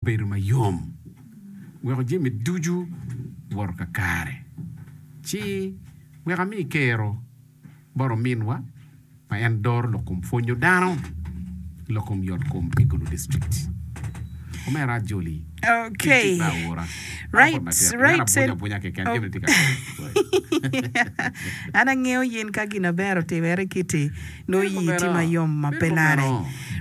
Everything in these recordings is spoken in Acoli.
bedo ma yom weko jami ducu woto kakare, ci wek ami kero bot ominwa ma en doro lok kom pwonyo dano lok kom yot kom pi gulu district. Omera ajoli Okay. tic me aura. Right, An apod matek. right, An abunya sen- abunya keken Oh. gin tye ka An angeyo yin ka gin aber otimere kiti. Nongo ii tye ma yom ma pe lare.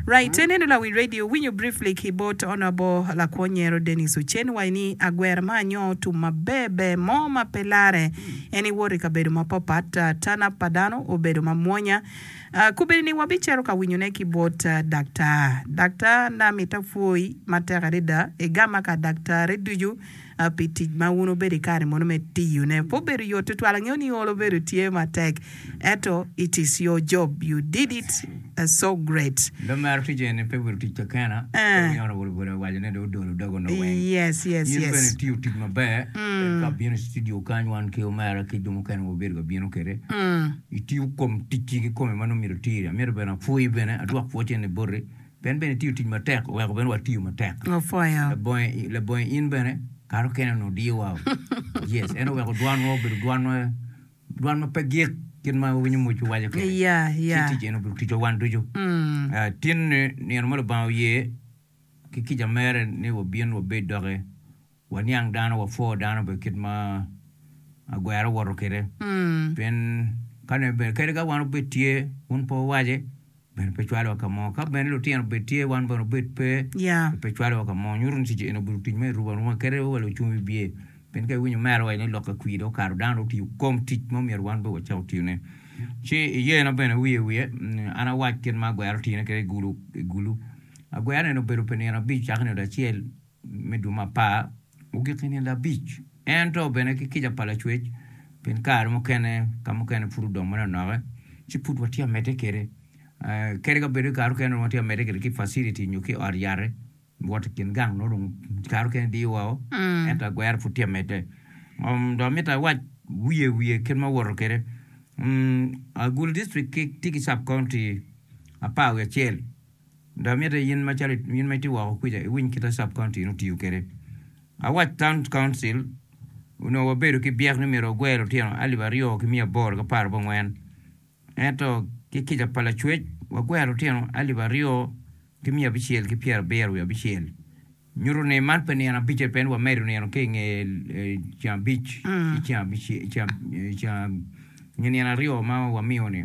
Right ineno lawiny radio winyo briefly ki bot Honourable lakwo nyero Denis Ocen wa ini agwera ma anyoo tum ma ber ber mo ma pe lare en iwot i kabedo ma pa pat turn up pa dano obedo ma mwonya kubedi ni wa bi cero ka winyo ne ki bot Daktar Daktar na mita pwoyi ma tek adada igama ka Daktar-re ducu pi tic ma wun wubedo i kare mono me tiyone. Pe obedo yot tutwal, angeyo ni olo bedo tye matek, ento it is your job, you did it so great. Lum maro tic eni pe obedo tic kekena, pe wunyoto wa bulu bulu awaco ni dong odolo doge onongo weng. Yes, yes, In bene yes. itiyo tic maber, ento ka bino i studio kany wan ki omera ki jo mukene ma wubedo ka bino kwede, itiyo kom ticci kikome ma nongo myero itiri. Amyero bene apwoyi bene, adwok pwocce ni boti. En bene tiyo tic matek oweko bene watiyo matek. Opwoyo. Labonge, labonge in bene kare okene onongo odiyowa. yes, en oweko dwanwa obedo dwanwa dwan ma pe gik kit ma wawinyo moc wawaco kene. Iya, iya. Ci tic en obedo ticwa wan ducu. Mm. Ah, tinni nino ma Lubanga oye ki kica mere ni wabin wabed doki Waniang dano, wapwo dano bene kit ma agwera owoto kwede, pien ka nongo bene kadi ka wan obed tye wun pe wuwace, bene pe cwalowa ka mo, ka bene lutino obed tye wan bene obed pe, pe cwalowa ka mo. Nyuto ni tic eni obedo tic ma erumo aruma kadi wa lucung wibye, pien ka iwinyo mere waco ni lok ka kwir dong okato, dano dong otiyo kom tic ma myero wan bene wacak watiyone. Ci iyena bene wiye wiye, an awac kit ma agwera otine kwede i gulu, agwera eni obedo pi nino abic cakki nino acel. me dwe ma apar ogik i nino abic, ento bene ki kica pa Lacwec, pien kare mukene ka mukene pud odong manonoke, ci pud watye ka medde kwede. Kadi ka bed ni kare mukene watye ka medde kwede ki i facility nyo ki i ot yat-ti, wot i kin gang nongo dong kare mukene diyo woko, ento agwero pud tye ka medde. Dong amito awac wiye wiye kit ma awoto kwede, Agulu dictrict tye ki cabkaunti apar wiye acel. Dong mitte in macalo in ma itye woko kwica iwiny kit ma Sub County eni otiyo kwede. Awac Town Council onongo wabedo ki byek ni myero wagwer lutino alip aryo ki miya aboro ki apar abongwen, ento ki kica pa Lacwec wagwero lutino alip aryo ki miya abicel ki pyerabiro wiye abicel. Nyuto ni man pe nino abice pien wamedo nino ki i nge ceng abic ki ceng nino aryo ma wamiyo-ni.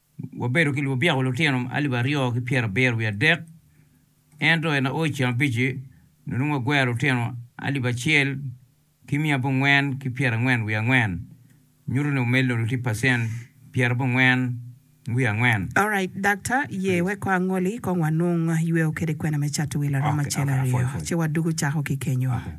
Wabedo ki lubyeko lutino alip aryo ki pyerabiro wiye adek, ento i naoc ceng abic-ci, nongo wagwero lutino alip acel ki miya abongwen ki pyerangwen wiye angwen, nyuto ni omedo nongo tye pacent pyerabongwen wiye angwen. Alright Daktar, ye wek kong angoli kong wanung yweo kede kwena me cato wil aromo acel aryo, ci wadwogo cako ki kenyo.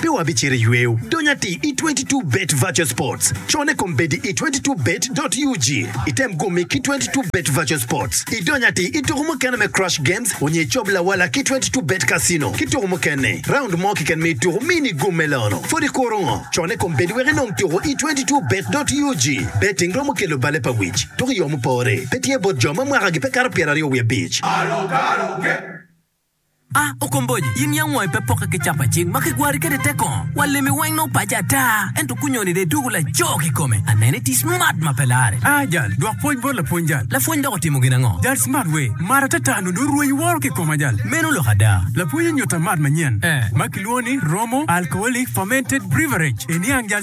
Pe wabicito i yweyo dony atir i 22 Bet Virtual Sports. Cone kom bed i 22 Bet dot ug. Item gumi ki 22 Bet Virtual Sports, idony atir i tuku mukene me Crush Games onyo icob lawala ki 22 Bet Casino ki tuku mukene. Raund mo keken ma ituku mi nigum me lono, pwod ikuro ngo? Cone kom bed wek inong tuku i 22 Bet dot ug. Betting romo kelo bale pa wic, dok i yo mupore, pe tye bot jo ma mwakagi pe kato pyeraryo wiye abic. A Okomboji, in yam wangi pe pokke ki capacit ma kigwari kwede tek kongo? Wa lemi weng nongo paci ata, ento kunyoni dong idwogo laco kikome. Aneno iti smart ma pe larre. A Jal, dwok pwony bot lapwony jal. Lapwony dok otimo gin ango? Jal, Smart wee, mar ata ata nongo dong rweny woro kikoma jal. Meno lok ada. Lapwony onyuta mat manyen ma kilwongo ni Romo Alcoholic Fermented Breverage. Iniang jal,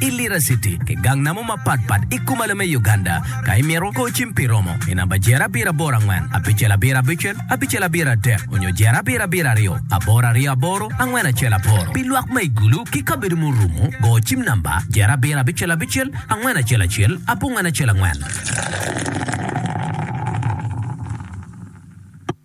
i Lira City ki gang namo mapat pat i Kumalo me Uganda. Ka imito, go cim pi romo i namba Jer abiro aboro angwen, abicel abiro abicel, abicel abiro adek, onyo Jer abiro abiro aryo, aboro aryo aboro, angwen acel aboro. Pi lwak ma i gulu ki kabedo ma orumo, go cim namba Jer abiro abicel abicel, angwen acel acel, abongwen acel angwen.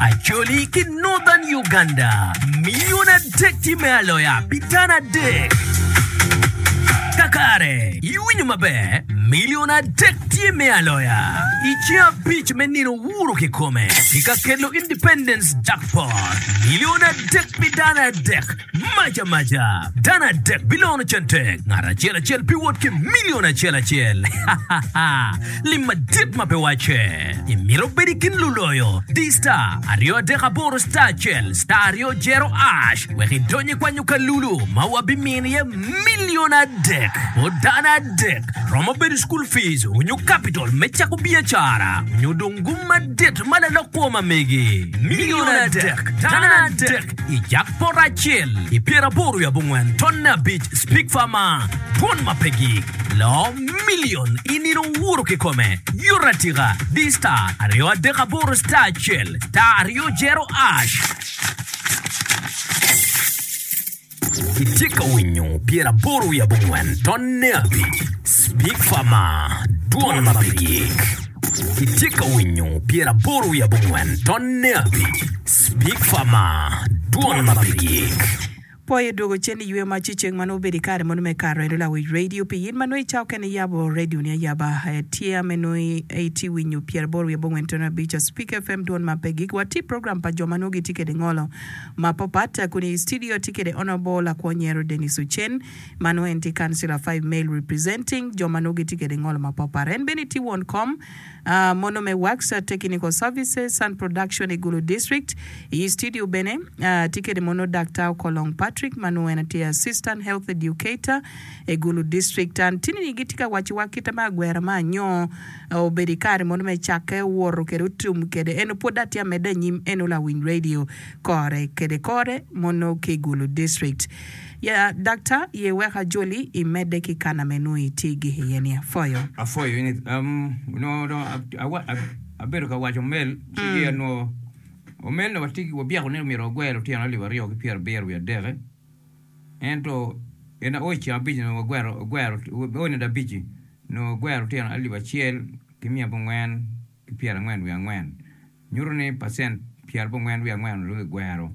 Acholi ki Northern Uganda miyone adek tye me aloya pi tana adek. Kakare, iwinyo maber, milion adek tye me aloya. I ceng abic me nino wuro kikome, ki ka kelo Independence Jackpot, milion adek pi dano adek Mac amaca, dano adek bilono center, ngat acel acel biwot ki milion acel acel. Lim madit ma pe wacce! Imito bedo i kin luloyo? Di star aryo adek aboro star acel star aryo jero ash wek idony i kwanyo kalulu ma wabimino iye milion adek. Po dano adek romo bedo school fees onyo capital me cako biacara onyo dong gum madit ma lalok kwo ma megi. Milion adek, dano adek. I jang poto acel i pyeraboro i abongwen tonne abic spigfa ma twon ma pe gik, lo milion i nino wuro kikome, yuto atika, di star aryo adek aboro star acel star aryo jero ash. Itye ka winyo pyeraboro i abongwen tonne abic spigfa ma twon ma pe gik. Itye ka winyo pyeraboro i abongwen tonne abic. Big Pharma, dwon ma pe gik. Poi odwogo cen i yweyo mac ci ceng ma nongo obedo i kare mono me Kato en olawic radio pi in ma nongo i cawa okene iyabo radio ni ayaba ee tye ame nongo i tye winyo pyera boro wiye bongwen tono abic a Speak FM dwon ma pe gik wa tye program pa jo ma nongo gi tye kede ngolo ma pa pat kun i studio atye kede Honourable lakwo nyero Denis Ocen ma nongo en tye councilor five male representing jo ma nongo gi tye kede ngolo ma pa pat en bene tye won kom mono me wax, technical services, sound production i Gulu District. I studio bene atye kwede mono Daktar Okolong Patrick ma nongo en tye Assistant Health Educator i Gulu District. An tini-ni gitye ka wacciwa kite me agwera ma anyo obedo i kare mono me cakke, owoto kwede otum kwede. Eno pwod atye amedde anyim, eno Lawiny Radio kore kwede kore mono ki i Gulu District. Ya daktar ye wek ajoli i medde ki kana me nwo i tye gik iye ni aphoyo. Aphoyo in onongo dong abedo ka waco omel ci gi anwo omel ni watye ki wabyeko ni myero wagwer lutino alip aryo ki pyera abiro wiye adeke ento in aoc ceng abic onongo wagwero aoc nade abici onongo wagwero lutino alip acel ki miya abongo angwen ki pyera angwen wiye angwen nyuto ni pacent pyera abongo angwen wiye angwen onongo dong ki gwero.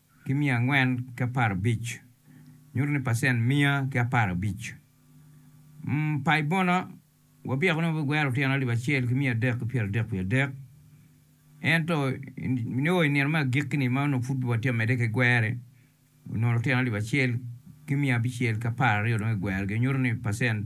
ki miya angwen ki apar abic, nyuto ni pacent miya ki apar abic. Um, pa i bono, wabyeko ni wabigwero otyeno alip acel ki miya adek ki pyera adek wiye adek. Ento, i nio i nino me agikki-ni ma onongo pud watye ka medde ki gwerre, onongo otyeno alip acel ki miya abicel ki apar aryo dong igwerogi, nyuto ni pacent.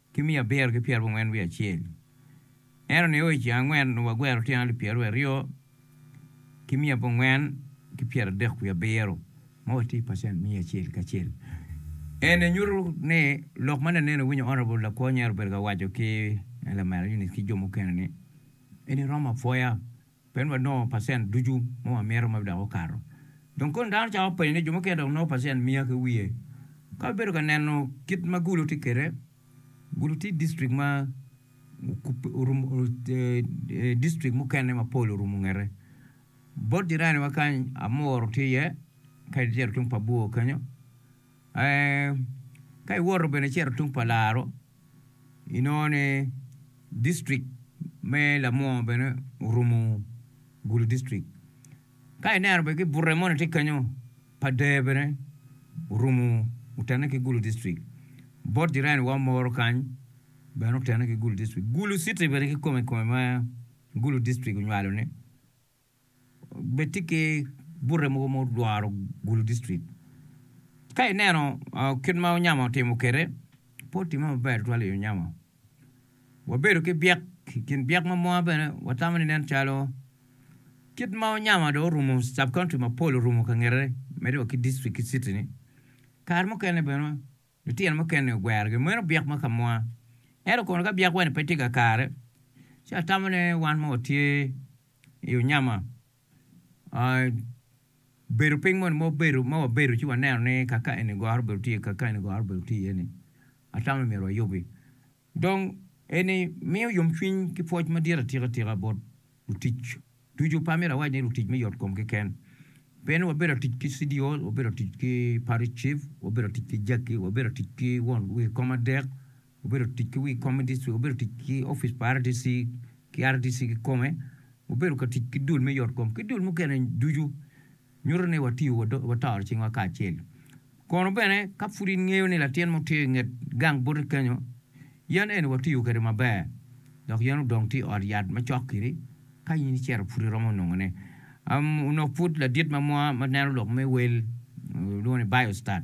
ki miya abiro ki pyerabongwen wiye acel. Ento nio i ceng angwen onongo wagwero otyeno alip pyeraryo ki miya abongwen ki pyeradek wiye abiro, ma watye pacent miya acel ki acel. Eni nyuto ni lok ma nenen iwinyo Honourable Lakwo Nyer obedo ka waco ki Lamela Eunice ki jo mukene ni eni romo apwoya. Pien wanongo pacent ducu ma wamito ma dok okato. Dong koni dano cako penyo ni jo mukene dok nongo pacent miya ki wiye? Ka wabedo ka neno kit ma Gulu tye kwede, Gulu tye distrik ma distrik mukene mapol orumo ngete. Bot jiraniwa kany Amuru tye iye, kadi tero tung Pabuo kenyo. Ee, ka iwoto bene icito tung pa laro, inongo ni distrik me Lamwongo bene orumo Gulu distrik. Ka ineno bene ki bute moni tye kenyo pa Deer bene orumo otene ki Gulu distrik. Bot jirani wa moro kany bene otene ki Gulu distrik. Gulu city bene kikome kikome ma Gulu distrik onywalo ne. bed tye ki bute mogo ma olworo Gulu district. Ka ineno kit ma Onyama otimo kwede, pe otimme maber tutwal i Onyama. Wabedo ki byek, i kin byek ma mwa bene watamo ni nen calo kit ma Onyama dong orumo sub-county mapol orumo ka ngete, medde wa ki district ki city-ni, kare mukene bene Litino mukene ogwerogi mweno byek ma kamwa. Ento kono ka byek-wa-ni pe tye kakare, ci atamo ni wan mo watye i onyama. Bedo piny moni ma wabedo, ma wabedo ci waneno ni kaka eni goro obedo tye iye, kaka eni goro obedo tye iye-ni, atamo ni myero wayubbi. Dong, eni miyo yomcwiny ki pwoc madit atika tika bot lutic ducu, pe amito awac ni lutic me yotkom keken. Pien wabedo atic ki Cidiol, wabedo atic ki Parish Chief, wabedo atic ki Jackie, wabedo atic ki won wi kom adek, wabedo atic ki wi kom me dictrict, wabedo atic ki opic pa RDC ki RDC kikome, wabedo ka tic ki dul me yotkom ki dul mukene ducu. nyuto ni watiyo watoro cingwa kacel. Kono bene ka pud ingeyo ni latin mo tye i nget gang boti kenyo, yen eni watiyo kwede maber dok yen odong tye i ot yat macok kiri ka in icito pud iromo nongone. Onok pud ladit ma mwa ma neno lok me wel, lwongo ni biostat.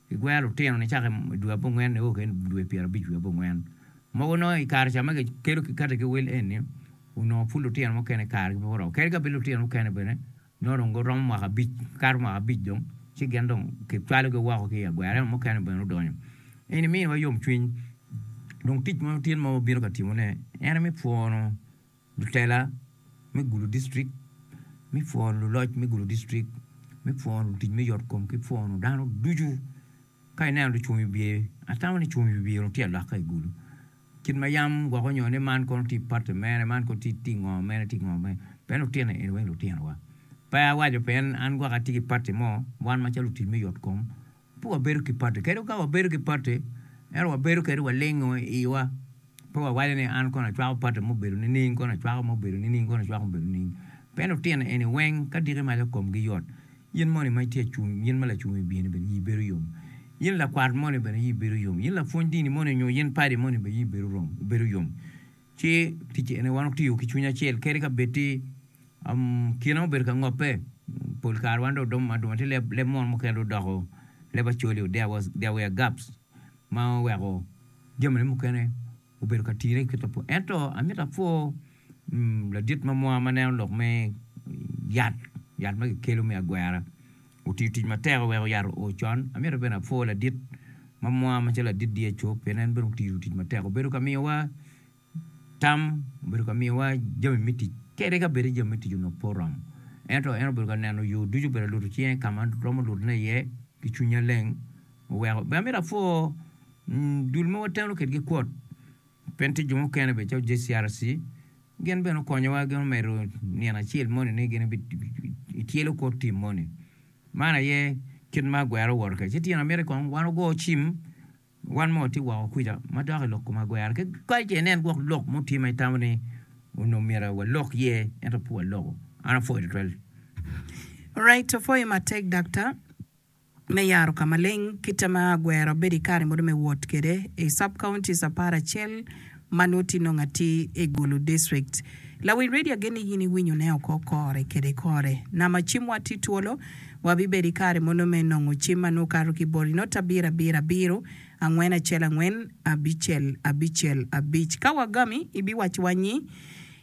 Gigwero lutino nicaka i dwe abongwen nio keken i dwe pyerabic wiye abongwen. Mogo nongo i kare ca ma kikedo ki kati ki wil eni, onongo pud lutino mukene kargi pe oromo. Kadi ka bed lutino mukene bene nongo dong giromo mwaka abic, kato mwaka abic dong ci gin dong kicwalogi woko ki i agwera. Ento mukene bene odonyo. Eni miniwa yomcwiny. Dong tic mo tyen ma wabino ka timone en aye me pwono Lutela me gudo distrik me pworo luloc me gudo distrik me pworo lutic me yotkom ki pworo dano ducu. Ka ineno lucung i wiye, atamo ni cung i wi wiye tye alok ka i gudo. Kit ma yam gwoko nyo ni man kono tye pati mere, man kono tye ngo mere tye ngo mere. Pien lutino eni weng lutinowa. Pe awaco pien an gwok atye ki pati mo, wan macalo lutic me yotkom. Pe wabedo ki pati kede ka wabedo ki pati ento wabedo kede walingo iwa pe wawaco ni an kono acwako pati ma obedo nining kono acwako ma obedo nining kono acwako ma obedo nining pien lutino eni weng ka diki maco komgi yot in moni ma itye acung in ma lacung wibye-ni bene ii bedo yom in lakwat moni bene ii bedo yom in lapwony dini moni nyo in padi moni bene ii bedo yom. Ci ticce eni wan otiyo ki cwiny acel kadi ka bed ti kine ma obedo ka ngobbe. Pol kare wan dong oduma aduma ti leb leb mono mukene dong odoko leb acoli there was there were gaps ma oweko jamine mukene obedo ka tine ki ta ento amito apwo ladit ma mwa ma neno lok me yat yat ma kikelo me agwera Otiyo tic matek wek oyato o con. Amito bene apwo ladit ma mwa macalo ladit Diacup pien en bene otiyo tic matek obedo ka miyowa tam, obedo ka miyowa jami me tic kadi ka bedi jami me tic onongo pe oromo ento en obedo ka neno yo ducu obedo ka luto cinge ka ma romo lutone iye ki cwiny maleng oweko bene amito apwo dul ma wateno kwedgi kwot. Pien tye jo mukene bene calo JCRC gin bene okonyowa gin omedo nino acel moni ni gin ityelo kor tim moni. Man aye kit ma agwera owoto kwede. Ci tyen amiti kong wan ogo cim wan ma watye woko kwica ma dok ilok kom agwera ki kany ce inen gwok lok mo tye ma itamo ni onongo myero walok iye ento pe waloko. An apwoyo tutwal. Alright, apwoyo matek Daktar. me yaro ka maleng kite ma agwero bedo i kare modo me wot kwede i sub-counties apar acel ma nongo tye nongo atir i Gulu District. Lawiny redio agen ni in iwinyo ne oko kore kede kore. Nama cim wa tye twolo, wa bi bedo i kare mono me nongo cim ma nongo kato ki boli not abiro abiro abiro, angwen acel angwen, abicel abicel abic. Ka wa gami, ibiwaco wa nyi.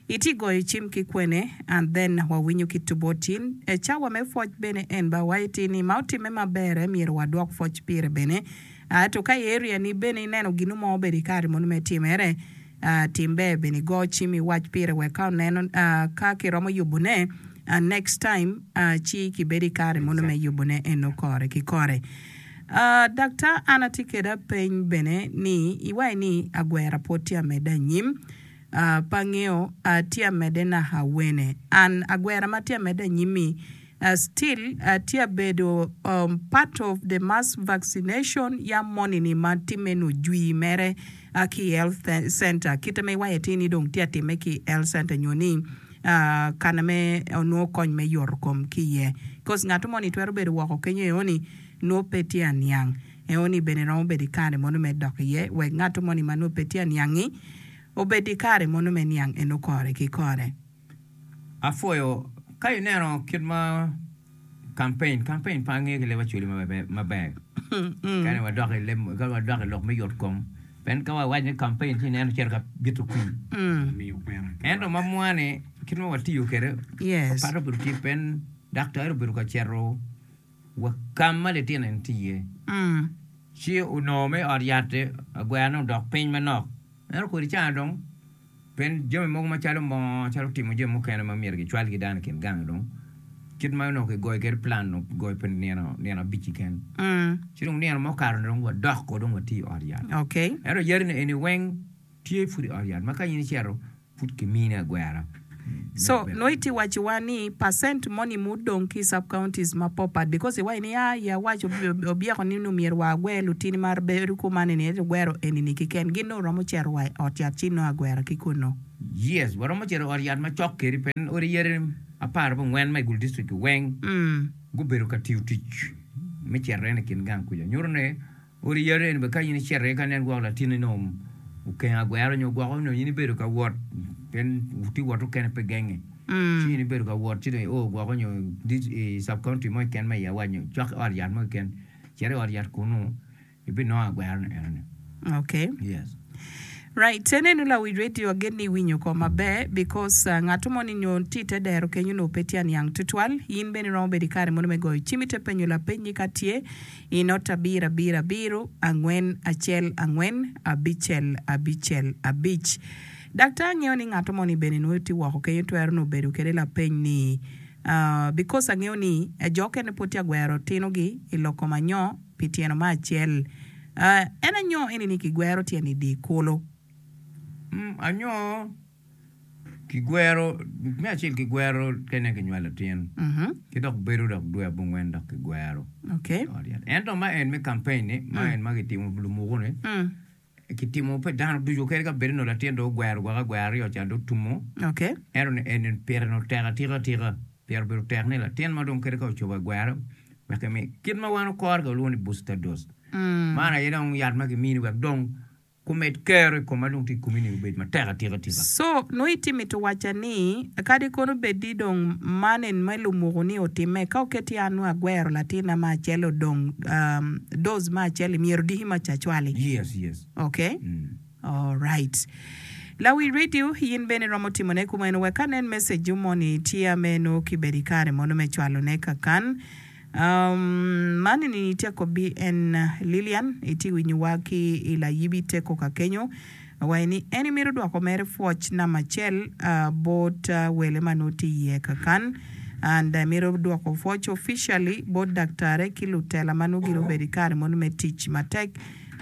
Iti goyo cim ki kwene and then wawinyo ki tubotin e cawa me pwoc bene en ba wa iti ni ma otimme maber e myero wa dwok pwoc pire bene a to ka i area ni bene i neno ginu mo obedo i kare munu me time re a tim ber bene i go cim i wac pire wek ka oneno a ka ki romo yubu ne a next time a ci ki bedo i kare munu me yubu ne en o kore ki kore a dakta an ati keda peny bene ni i wa i ni agwera pwod tye amedde anyim pe angeyo atye amede naka wene an agwera ma tye amede anyimi still atye abedo part of the mass vaccination yam moni ni ma time ni ojwi mere ki health center kite ma iwaco atir ni dong tye atime ki health center nyo ni kana me onongo kony me yoto kom ki iye coz ngato moni twero bedo woko kenyo eo ni nongo pe tye aniang. Eoni bene romo bedo i kare mono me dok iye, wek ngatto moni ma nongo pe tye aniang-ngi obed i kare mono me niang en okore ki kore. Apwoyo ka ineno kit ma campaign campaign pe ange ki leb acwali maber kani wadok i leb kani wadok i lok me yot kom pien ka wawaco ni campaign ci ineno cito ka bito kwir ento ma mwani kit ma watiyo kwede opate bute pien daktari obedo ka cito wa ka ma litino-ni tye iye, ci onongo me ot yat-ti agwera ni odok piny manok. Ento kodi cana dong, pien jami mogo macalo moo, calo timo jami mukene ma myero gicwalgi dano i kin gang-ngi dong, kit ma onongo kigoyo kwede pulan onongo kigoyo pi nino, nino abic-ci keken. Ci dong nino ma okato-ni dong wadok ko dong wati i ot yat. Ento yadi-ni eni weng tye pud i ot yat ma ka in icito, pud kimini agwera. So nongo itye waco wa ni percent moni ma odong ki sub counties ma po pat because iwaco ni yaa i awaco obyeko ni nongo myero wa agwer lutini ma bedo kuman eni ento igwero eni ni kiken gin nongo romo cito wa i ot yat ci nongo agwera ki kunu. Yes waromo cito i ot yat ma cok kedi pe odi yadi apar ki ongwen ma i gulu district weng gubedo ka tiyo tic me cito en i kin gang kuca nyuto ni Ot i Yaren bene ka in icito iye ka nen gwok latinni nongo okenge agwero nyo gwoko nongo in ibedo ka wot pien tye wot okene pe genge ci in ibedo ka wot ci dong i o gwoko nyo i sub county mo keken ma iye awac nyo cok ki ot yat mo keken cit i ot yat kunu ibinongo agwero ni eno ni. Okay. Yes. Right, te nenu lawic radio agen ni iwinyo oko maber because uh, ngato mo ni nyo tye ite dero kenyo nongo pe tye aniang tutwal, in bene iromo bedo i kare mono me goyo cim ite penyo lapeny ni ka tye I not abirabiro abiro angwen acel angwen abicel abicel abic. Dak ta angeyo ni ngato moni bene nongo tye woko kenyo twero nongo bedo kede lapeny ni aah because angeyo ni jo okene pwod tye agwero tino gi I lok kom anyo pi tyeno ma acel aah en anyo eni ni kigwero tyeni di kulu mm anyo. Kigwero, me acel kigwero kene kinywalo latin. Ki dok bedo dok dwe abongwen dok kigwero. Okay. Ento ma en me campaign ni, ma en ma kitimo lumuku ni, kitimo pe dano ducu kadi ka bedo ni latin do ogwero gwaka gwer aryo ca do tumo. Okay. Ento ni en pire no tek atika tika. Pire obedo tek ni latin ma dong kadi ka ocobo agwero wek emi kit ma wan okore ka walwongo ni booster dose. Man aye dong yat ma kimini wek dong Gumed kero i koma dong ti i komi ni obed matek atika tika. Co, nongo iti mito wacca ni, kadi kono bed ni dong man en me lumuku ni otimme, ka oket i an nongo agwero latinna ma acel odong doz ma acel-li, myero odiki ma cacwali. Yes, yes. Okay. Alright. Lawi radio, yin bene iromo timone kumeno. Wek anen message-u moni, tye ameno kibedo i kare mono me cwalone kakan. Man eni ni te kobbi en Lilian iti winyo wa ki i layibi te koka kenyo awayi ni eni mito dwoko mere fwoc namba acel bot wele ma nwo ti iye kakan and emito dwoko fwoc officially bot daktare ki lutela ma nwo gire obedo i kare mono me tic matek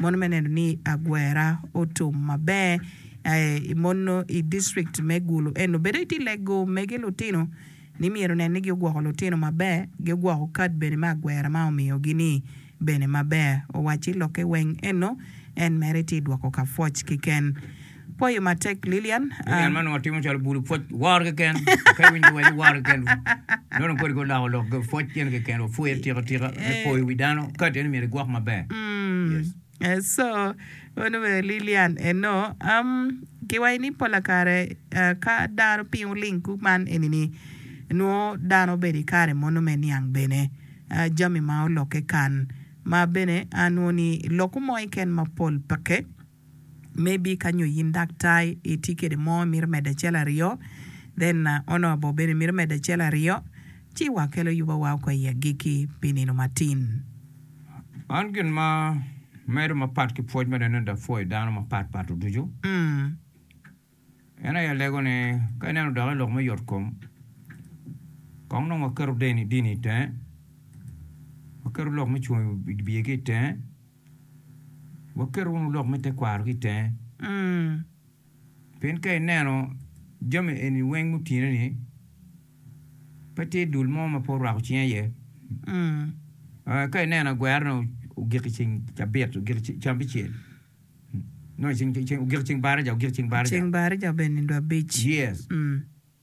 mono me neno ni agwera otum maber mono i district me gulu eno bene iti lego mege lutino ni myero onen ni giogwoko lutino maber, giogwoko kad bene me agwera ma omiyogi-ni bene maber. Owacci lokke weng eno, en mere tye dwoko ka pwoc keken. Pwoyo matek, Lilian. Lilian ma nongo timo calo bulu pwoc woro keken, pe winyo wel ni woro keken, nongo dong kodi ko loko lok pwoc gin keken, wapwoye atika tika me poyo wi dano, kad eno myero igwok maber. Yes. And so meno bene Lilian and no am giwaco ni pola kare ka dano piny wuling kuman eni ni nwo dano obedo i kare mono me niang bene jami ma oloke kan ma bene a nwo ni loku mo iken ma pol peke may be ka nyo yin daktar iti kede mo imito medo acel aryo then ono bo bene mito medo acel aryo ci wa kelo yuba wa oko i agiki pi nino matin. Man gin ma medo mapat ki pwoc ma Daniel da pwoyo dano mapat pat oducu. En aye alego ni ka ineno doki lok me yot kom, kong nong waketo dini dini i tenge, waketo lok me cung i biye ki i tenge, waketo wunu lok me tekwaro ki i tenge. Pien ka ineno jami eni weng mutineni, pe tye dul mo ma pe orwako cinge iye. Ka ineno agwerane ogik i ceng cabit, ogik i cambicel, ogik i ceng baraja, ogik i ceng baraja. Ceng baraja bene dwe abic. Yes.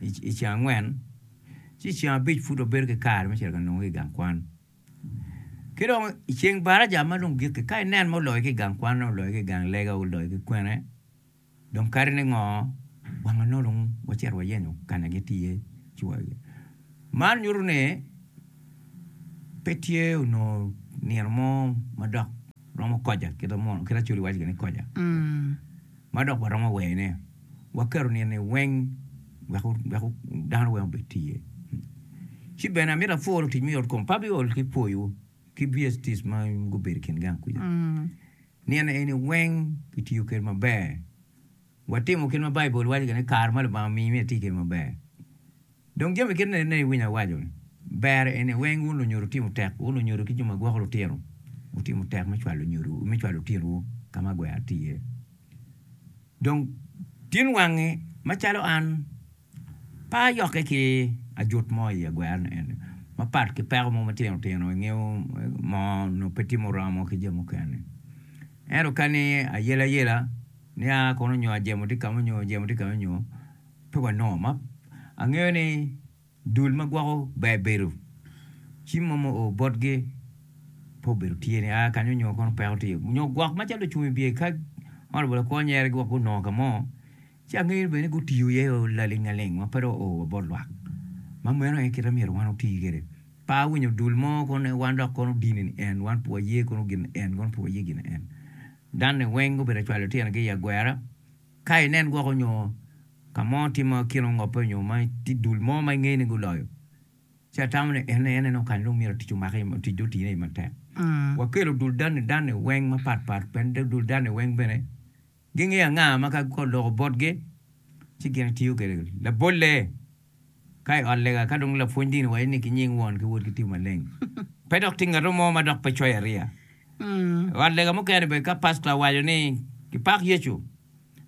i ceng angwen, ci i ceng abic pud wabedo ki kare me cito ka nongo ki i gang kwan. Ki dong i ceng baraja ma dong gikki, ka inen ma oloyo ki i gang kwanne, oloyo ki i gang lega, oloyo ki kwene, dong kadi ni ngo, wang anongo dong wacito wayenyo ka ma gitye iye ci wa iye. Man nyuto ni pe tye onongo nino mo ma dok romo koja, kit ma Acholi waco gin ni koja, ma dok waromo wene. waketo nino-ni weng wek dano weng obed tye. Ci bene amito apwor lutic me yotkom pa biol ki pwoyo ki BSTs ma gubedo i kin gang kwica. Nino eni weng kitiyo kwede maber, watimo kit ma Baibul waco gire ni, Kare ma Lubanga omiyo imito iti kwede maber. Dong jami kit ni ene iwinyo awaco ni, Ber eni weng wun lunyodo wutimo tek, wun lunyodo ki jo ma gwoko lutino wutimo tek me cwalo nyodowu, me cwalo otinowu ka ma gwero tye iye. Dong tin wangi macalo an pe ayokke ki ajut mo i agwero-ni eni, mapat ki peko mo matino tino i ngewu mo nongo pe timo romo ki jo mukene. Ento ka ni ayel ayela, nia kono nyo ajemo tye kamo nyo ajemo tye kamo nyo, Pe wanongo ma. Angeyo ni dul ma gwoko ber bedo, cim mo mu oo botgi pe obedo tye ni aa kany onyo kono peko tye onyo gwok macalo ocung ibye ka honorable Akwor nyere gi wa gunongo ka mo ci angeyo bene ni gutiyo iye o laling aling ma pe dong oo wa bot lwak ma meno aye kite myero wan oti kede. Pe awinyo dul mo kono ni wan dok kono dini ni en wan pe waye kono gin ni en kono pe waye gin ni en. Danni weng gubedo cwalo tyene gi i agwera. Ka inen woko nyo ka mo tye ma kine ongope onyo ma tye dul mo ma ingeyo ni guloyo, ci atamo ni en aye neno kany dong myero tic omake, tic dong otine i ye matek. Wakelo dul dani dani weng mapat pat pien dul dani weng bene gingeyo anga ma ka kor loko botgi ci gin etiyo kwede, labolle. Ka i ot lega, ka dong lapwony dini waco ni ki nying Won ki Wod ki Tiyo Maleng, pe dok tye ngato mo ma dok pe coyo ariya. I ot lega mukene bene ka pastor owaco ni kipak Yecu,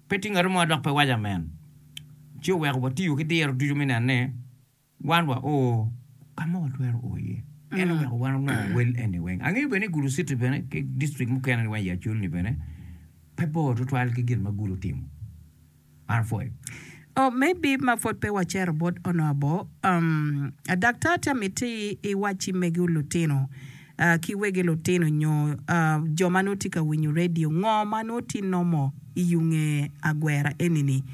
pe tye ngato mo ma dok pe waco amen. Ci oweko watiyo ki diro ducu me neno ni wan wa o ka ma watwero o iye. En oweko wan onongo wel eni weng. Angeyo bene ni Gulu City bene ki district mukene ni weng i Aculni bene pe bor tutwal ki gin ma Gulu otimo. Arvoy. Oh, maybe ma pwod pe wacero bot onoo abo. Um, a daktar tye amiti i wacci megi lutino, ah, ki wegi lutino nyo, ah, jo ma nongo tye ka winyo radio, ngo ma nongo tye nomo i yo nge agwera eni-ni.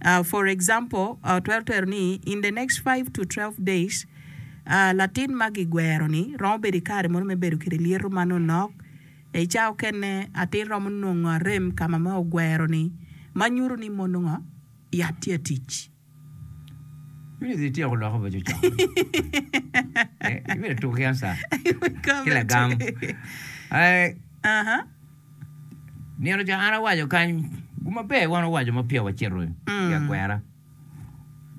Ah, for example, ah, otwero twero ni in the next five to twelve days, ah, latin ma gigwero-ni romo bedo i kare mono me bedo kede lyeto ma nonok, I cawa okene, atir romo nongo arem ka ma ogwero-ni ma nyuto ni mono ngo? Yat tye atic. Ibino dhi tyeko lok obedo cok mene? Ibino tuko ki anca ki lagam? Nino ca an awaco kany, gu maber wan owaco ma peya wacito i agwera.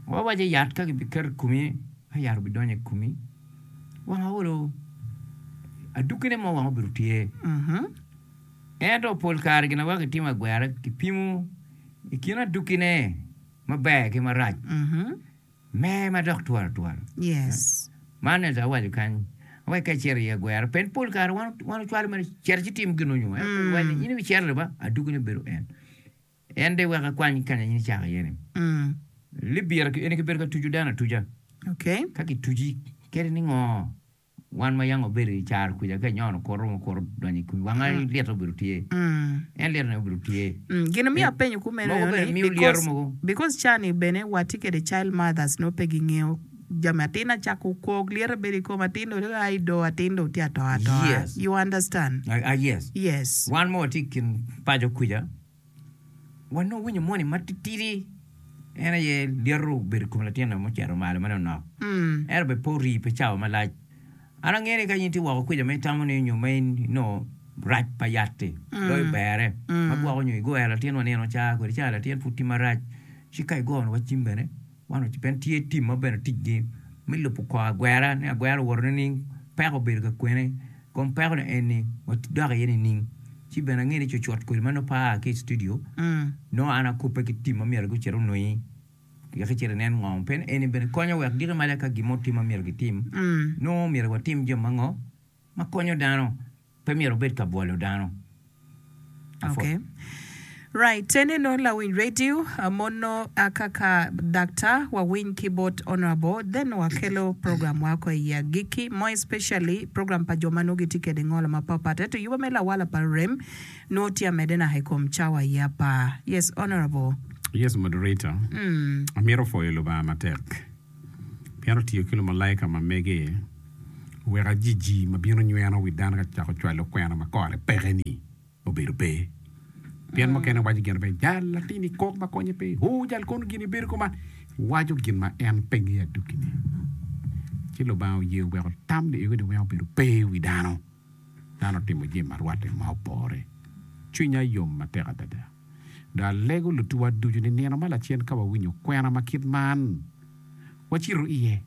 Wawaco yat ka kibiketo i komi ka yat obidonyo i komi wang aolo aduggine mo wang obido tye ento pol kare gin ma weko kitimo agwera kipimo i kin aduggine maber ki marac me madok twolo twolo man ento awaco kany wek ka icito i agwera pien pol kare wan ocwalo mere cito ci tim gin nonyo in ibicito leba aduggine bedo en. En de weko ekwany kanya in icako iye-ni. Libira ki eni kibedo ka tucu dano atuca. Ka kituci kadi ni ngo, wan ma yanga obedo i caro kwica ka inyono kor romo kor donyo i kwi wanga, lyeto obedo tye. En lyeto ne obedo tye. Gin omiyo apenyo kumeno Mogo bene miyo lyeto aye ni, mogo. because ca ni bene watye kede child mothers nongo pe gingeyo jami atin na cako kok lyeto bedo i kom atin dong dong a i do atin dong tye atoa atoa. Yes. You understand? Ah, yes. Yes. Wan ma watye i kin paco kwica. Wanongo winyo moni matitidi en aye lyeto obedo i kom latinna ma ocito malo ma nonok, ento bene pe orii pi cawa malac. An angeyo ni ka in tye woko kwica ma itamo ni nyo ma inongo rac pa yat-ti, doyo berre ma gwoko nyo igoyo latinwa nino caa kwede caa latin pud tye marac, ci ka igoyo wa cim bene. Man oc ben tye tim ma bene ticgi me lubo kor agwera ni agwera owoto nining peko obedo ka kwene kom peko ni eni dok iye nining ci bene ange ni cucut kodi ma nongo pe aa ki i studio nongo an akubbe ki tim ma myero gucit onongi wek icit inen ngo pien eni bene konyo wek giko maca ka gin mo tye ma myero gitim nongo myero watim jo mango ma konyo dano pe myero obed ka bwolo dano. Apwod. Okay. Right. Te neno lawiny radio mono aka ka Daktar wawiny ki bot Honourable then wa kelo program wa ko i agiki more especially program pa jo ma nongo gitye kede ngolo ma pat pat ento yuba me lawala pa rem nongo tye amede naka i kom cawa aye apar. Yes Honourable. Yes Moderator. Amito pwoyo Lubanga matek. pien otiyo ki lumalaika ma mege wek ajiji ma bino nyweno wi dano ka cako cwalo kwena ma kore peke-ni obedo pe. Pien mukene waco gin pe, Jal latin i kok ma konye pe, o jal kono gin ibedo kuman, waco gin ma en pe ngeyo adwogi-ni. Ci Lubanga oye oweko tam ni ego-ni weng obedo pe i wi dano. Dano otimo jami ma rwatte ma opore. Cwinya yom matek adada! Dong alego lutuwa ducu ni nino ma lacen ka wawinyo kwena ma kit man, wacito iye,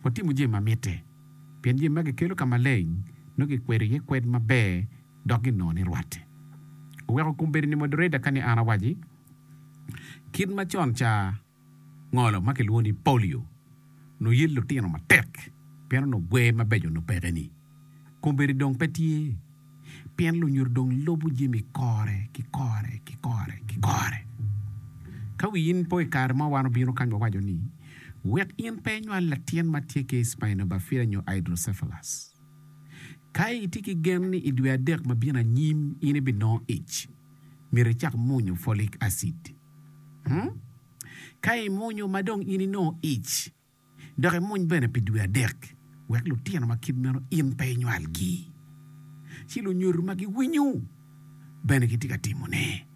watimo jami ma mitte, pien jami magi kelo ka maleng nongo kikwedo iye kwed maber dok ginongo ni rwatte. Oweko kom bedo ni moderator ka ni an awaci kit macon ca. ngolo ma kilwongo ni polio onongo yelo litino matek pien onongo gwer mabeco onongo peke ni kombeddi dong pe tye pien lunyuto dong lubo jami kore ki kore ki kore ki kore. Ka wiyi in po i kare mo wan obino kany wawaco ni wek in pe inywal latin ma tye ki spinobifida nyo hydrocephalus. Ka itye ki gen ni i dwe adek ma bino anyim in ibinongo ic, myero icak mwonyo folic acid. Ka imwonyo ma dong in inongo ic, dok imwony bene pi dwe adek, wek lutino ma kit meno in pe inywalgi. Ci lunyodo ma giwinyo bene gitye ka timone,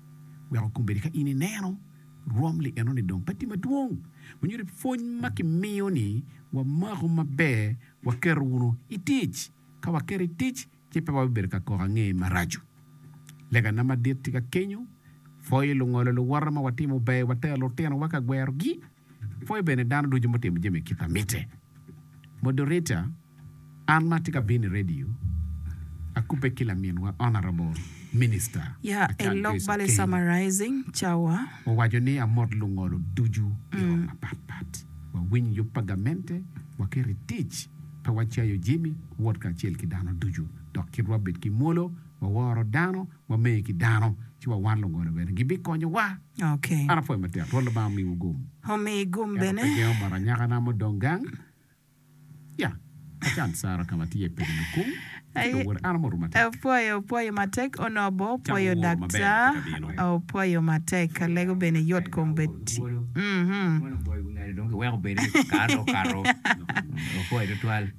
weko kombeddi ka in ineno rwom li enoni dong pe tye madwong, onyo ni pwony ma kimiyo-ni wamako maber, waketo wunu i tic. Ka waketo i tic, ci pe wabibedo ka koko angeye maraco. Legana madit tye ka kenyo, Pwoyo lungolo luwote ma watimo ber, watero lutinowa ka gwerogi, pwoyo bene dano ducu mutimo jami i kit a mitte. Moderator, An ma atye ka bino i redio, akubbe ki laminwa Honourable Minister Achan Joyce Okeyo, owaco ni amot lungolo ducu i rok mapat pat, wawiny yub pa gamente, waket i tic. Pe wacayo jami wot kacel ki dano ducu, dok kit wabed ki mwolo, waworo dano, wamee ki dano, ci wawar lungolo bene, gibikonyowa. An apwoyo matek. Rwot Lubanga omiwu gum. Ento pe gengo mot anyakana mudong gang. Ya, acan Sara ka ma tye i peki lukung. Aye opwoyo opwoyo matek onongo bene opwoyo daktar opwoyo matek alego bene yot kom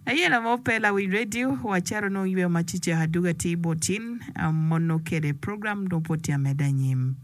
aye lama ope lawic radio wa caro nongo yweyo ma cecek aduga tye ibot cin mono kede program nongo pwod tye ameda anyim.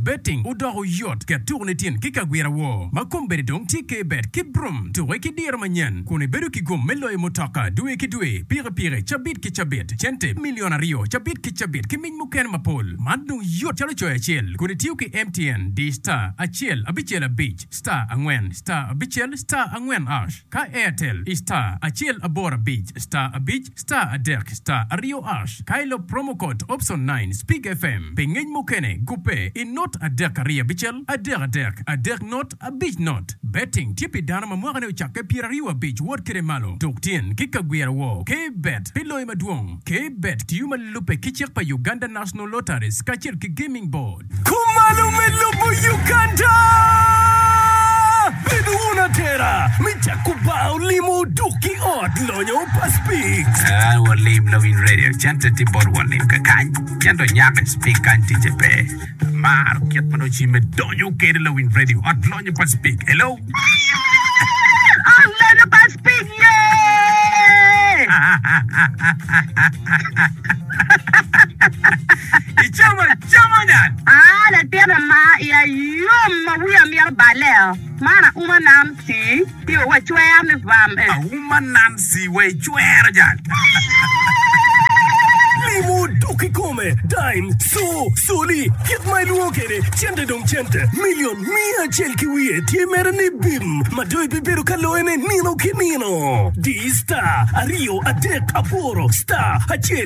Betting odoko yot, ket tuku nitin ki ka gwira woo ma kombeddi dong tye ke bet ki brum, tuke ki diro manyen kun ibedo ki gum me loyo mutoka dwe ki dwe, pikipiki, cabit ki cabit, cente milion aryo cabit ki cabit ki mic mukene mapol. Man dong yot calo coyo acel kun itiyo ki MTN, di star acel abicel abic star angwen star abicel star angwen ash. Ka Airtel i star acel aboro abic star abic star adek star aryo ash ka ilop promo code option nine speak FM pi ngec mukene gubbe i not adek aryo abicel adek adek adek not abic not Betting tye pi dano ma mwakane ocakke pyeraryo abic wot kede malo tuk tyen ki ka gwira wor K Bet pi loyo madwong K Bet tiyo ma lubbe ki cik pa Uganda National Lotteries kacel ki Gaming Board. Kumalo me lobo Uganda. Bed wun atera me jako bar olimo duk ki ot lonyo pa Speaks. Aa walim lawiny radio cente tye bot walim kakany pien dong nyako Speak kany ticce pe. Amaro kit ma dong cimme donyo kede lawiny radio ot lonyo pa Speak. Hello. Ot lonyo pa Speak ye. Icamo Aa, latinna ma iya yom, ma wiya mito balle o, man auma Nancy, tiyo wa icwer ni vam e. Auma Nancy wa icwer jang. Limo dok kikome, dime, co, coli, kit ma ilwongo kwede, cente dong cente, million, miya acel ki wiye tye mere ni bim, ma dong ibibedo ka loyone nino ki nino. Di star, aryo, adek, aboro, star, acel.